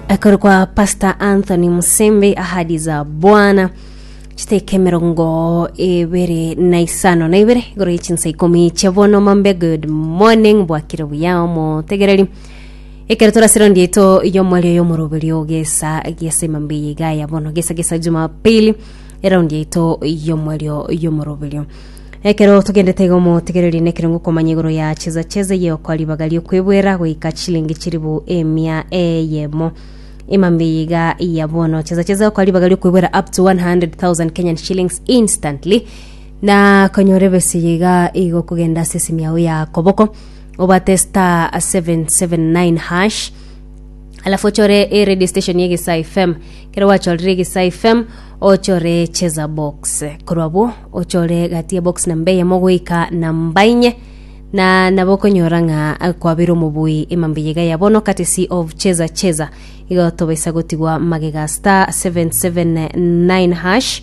akore kwa pastor anthony musembe ahadi za bwana chiteka emerongo ebere na isano na ibere igoro yechinsa ikomi chia bono mambe good morning bwakire buya omotegereri ekero torasira ndieto yomwari oyo omoroberi ogesa gesa emambe yiga ya bono gesa gesa jumapili eraundi yaito yomwario yomoroberio Ekero togendete iga omotigereri nekerongo komanya igoro ya cheza cheza eye okwa ribaga riokwebwera goika chilingi chiribu emia eyemo imambi iga iya bono cheza cheza okwa ribaga riokwebwera up to 100,000 Kenyan shillings instantly na konyora ebesi iga igo kogenda ase esimi yao ya koboko obate star 779 hash alafu ochore e radio station ye Gisa FM kero gwachorire Gisa FM ochore cheza box korwa bo ochore gati ya box namba eyemo goika namba inye na nabo okonyora ng'a eh, kwabera omobui emambe yega ya bono courtesy of cheza cheza igo tobaisa gotigwa magega star 779 hash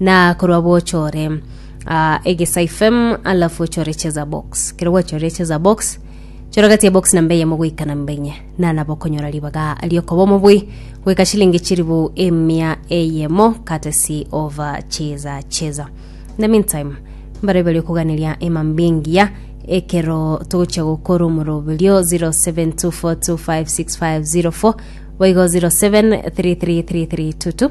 Na korwa bwochore ah, egesaifem alafu ochore cheza box kero gwachorire cheza box chora gati ya box namba eyemo goika namba enye na nabo okonyora ribaga riokoba omobui goika shilingi chiribu emia eyemo courtesy of ah, cheza cheza in the meantime mbare bari okuganiria emambingiya ekero togochia gokora omoroberio 0724256504 boigo 07333322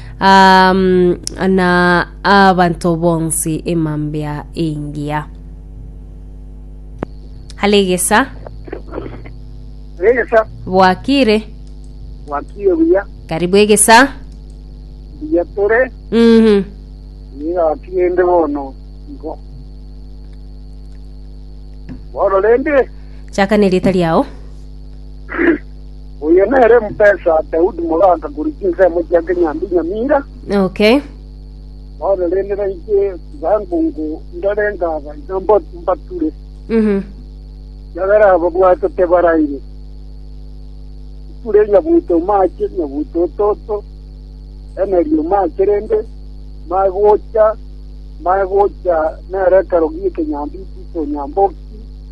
um, na abanto bonsi emambia engiya alegesa Regesa, bwakire wakire buya, karibu egesa buya tore, Mhm. niga wakire ende bono, igo. Bono rende, chaka nerieta riao Oyo nere mpesa Daudi mogaaka korwa chinsemo chia Kenyambi Nyamira, Okay. bono rende nainche Sangongo ndore ngaba iga mbo- mbature, Mhm. ekiagera ababwate tebaraire. Iture nyabuto mache, nyabuto ototo, emerio mache rende, mae gocha, mae gocha nere ekero gie Kenyambi tito Nyamboki,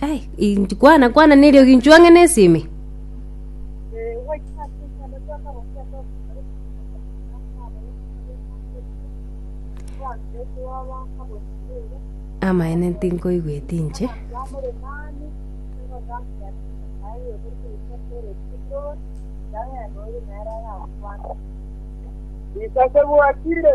ai inji kwana kwana nerio ginchu ang'e nesime amaene tinkoigweti inche Isase bwakire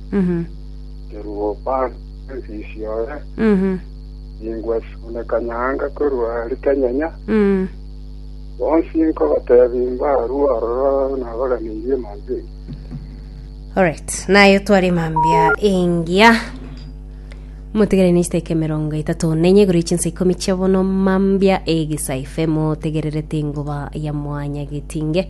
Kerubo bande nsisiore, ningwesune kanyanga korwa are kenyenya, bonsi nkobatebi mbarue ororo nabaraneirie mambia engiya. Alright, naye tware mambia engiya motegerere nechita eke emerongo etato nenye igoro echinsa ikomi chia bono mambia egesaife motegererete engoba ya mwanya getinge